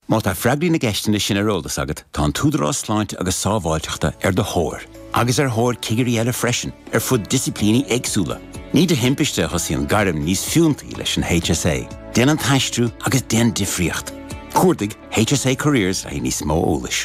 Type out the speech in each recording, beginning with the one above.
Má tá freagraí na gceisteanna sin ar eolas agat, tá an tÚdarás Sláinte agus Sábháilteachta ar do thóir, agus ar thóir cigirí eile freisin, ar fud disciplíní éagsúla. Ní de thimpiste a thosaíonn gairm níos fiúntaí leis an HSA. Déan an t-aistriú agus déan difríocht! Cuardaigh HSA Careers le haghaidh níos mó eolais.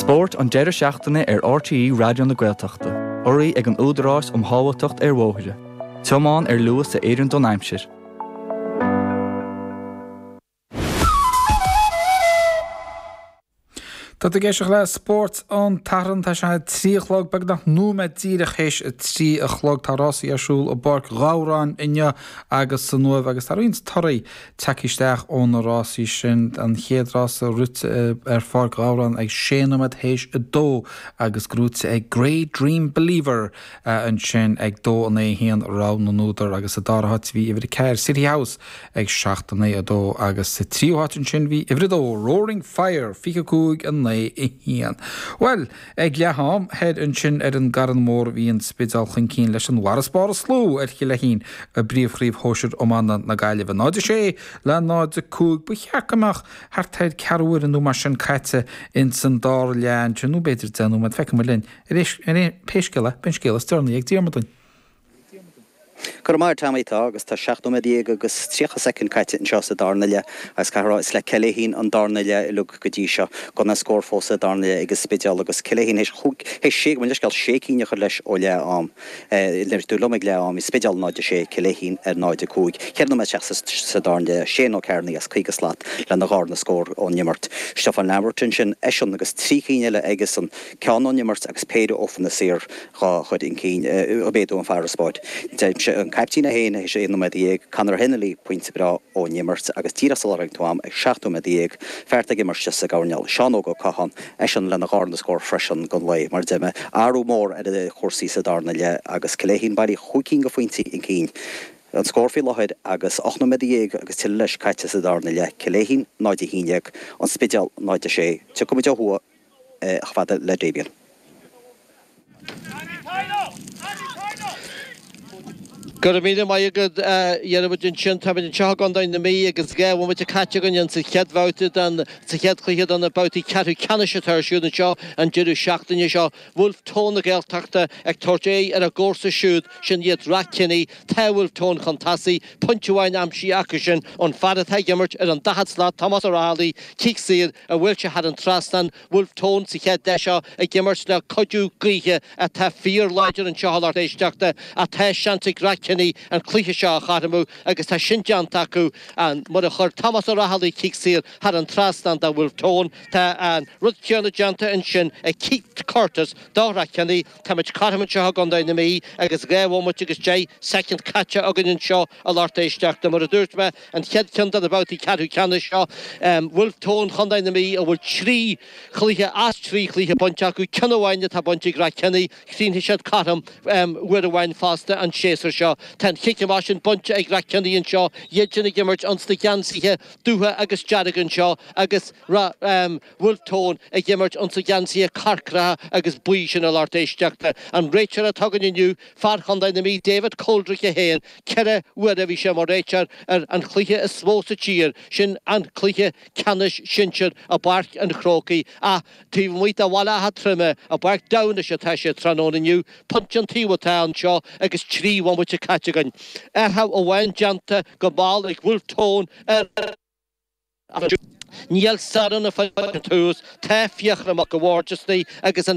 Spórt an deireadh seachtaine ar RTÉ Raidió na Gaeltachta, urraithe ag an Údarás um Shábháilteacht ar Bhóithre, tiomáin ar luas a oireann don aimsir. Tá tú ag éisteacht le Spórt an tSathairn. Tá sé trí a chlog beagnach nóiméad díreach théis a trí a chlog. Tá rásaí ar siúl i bPáirc Ghabhráin inniu agus san Uaimh agus tá roinnt torthaí tagtha isteach ó na rásaí sin, an chéad rása rite ar Pháirc Ghabhráin ag sé nóiméad théis a dó agus gnóite ag Grey Dream Believer ansin ag dó in aghaidh a haon, rogha na n-údar agus sa dara háit bhí uimhir a ceathair City House ag seacht in aghaidh a dó agus sa tríú háit ansin bhí uimhir a dó Roaring Fire fiche a cúig in aghaidh a haon. Bhuel! Ag leath am thoir ansin ar an gCarn Mór bhí an Spidéal chun cinn leis an bhfarasbarr is lú ar Chill Fhéichín i bpríomhchraobh shóisir iomána na Gaillimhe, 0, 6 le 0, 5. Ba cheart go mbeadh thart ar ceathrú uaire nó mar sin caite ins an dara leath ansin nó b'fhéidir deich nóiméad, feicfimid linn. Pé scéal é, beidh an scéal is deireanaí ag Diarmuid dúinn. Go raibh maith agat Tommy. Tá agus tá seacht nóiméad dhéag agus tríocha soicind caite anseo sa darna leath agus caithfidh a rá is le Cill Fhéichín an darna leath uilig go dtí seo. Gan aon scór fós sa darna leath ag an Spidéal agus Cill Fhéichín théis chúig, théis sé, gabh mo leithscéal, sé cinn a chur leis ó leath am, nuair a bhí tú liom, ag leath am bhí Spidéal 0-6, Cill Fhéichín ar 0-5. Ceithre nóiméad isteach sa darna leath, Shane Ó Cearnaigh as caoga slat lena dharna scór ón imirt. Stiofán Lambert ansin, eisean agus trí cinn eile aigesan, ceann ón imirt agus péire ó phocanna saor. dhá chur chun cinn. Ag méadú an farasbarr. Deirimse an caiptín é féin, théis aon nóiméad dhéag, Conor Hennelly, pointe breá ón imirt agus díreach sular tháinig tú agam, ag seacht nóiméad dhéag, fear atá ag imirt sa gcoirnéal, Seán Óg Ó Catháin, eisean lena dharna scór freisin don lae, mar deir mé, athrú mór ar chúrsaí sa darna leath agus Cill Fhéichín bailí chúig cinn de phointí chun cinn. An scór faoi láthair agus ocht nóiméad dhéag agus tuilleadh leis caite sa darna leath, Cill Fhéichín 0-11, An Spidéal 0-6. Tiocfaimid ó thuaidh. chomh fada le Damien. Go raibh míle maith agat, a Dhiarmuid. Ansin, táimid anseo i gContae na Mí agus dhá bhomaite caite againn sa chéad bhabhta den, sa chéad chluiche de na babhtaí ceathrú ceannais atá ar siúl anseo an deireadh seachtaine seo. Bhulf Tón na Gaeltachta ag tabhairt aghaidh ar a gcomharsa siúd, sin iad Rathkenny. Tá Bhulf Tón chun tosaigh. Pointe amháin aimsithe acu sin, an fear atá ag imirt ar an daichead slat, Tomás Ó Raghallaigh, cic saor a bhuail sé thar an trasnán, Bhulf Tón sa chéad leath seo ag imirt le cuidiú gaoithe atá fíor-láidir anseo a lucht éisteachta ach tá seans ag Rathkenny an cluiche seo a chothromú agus tá sin déanta acu mar a chuir Tomás Ó Raghallaigh cic saor thar an trasnán do Bhulf Tón. Tá an rud céanna déanta ansin ag Keith Curtis do Rathkenny. Táimid cothrom anseo i gContae na Mí agus dhá bhomaite agus deich soicind caite againn anseo a lucht éisteachta. Mar a dúirt mé, an chéad cheann de na babhtaí ceathrú ceannais seo. Bhulf Tón Chontae na Mí a bhfuil trí chluiche as trí chluiche bainte acu, ceann amháin atá bainte ag Rathkenny. Chríochnaigh siad cothrom uair amháin fosta an séasúr seo. Tá an chic amach sin bainte ag Rathkenny anseo, iad sin ag imirt ins na geansaithe dubha agus dearga anseo agus Ráth. Bhulf Tón ag imirt ins na geansaithe corcraithe agus buí sin a lucht éisteachta. An réiteoir atá againn inniu, fear Chontae na Mí David Coldrick é féin, ceithre huaire a bhí sé mar réiteoir ar an chluiche is mó sa tír, sin an cluiche ceannais sinsir i bPáirc an Chrócaigh ach taobh amuigh de Bhaile Átha Troim, i bPáirc Damhnais atá sé tráthnóna inniu, pointe an taobh atá anseo agus trí bhomaite caite againn. Athrú amháin déanta go mall ag Bhulf Tón ar. Níl stair na Faisin Tús, Tá Fiachra Mac a' Bhaird istigh agus an.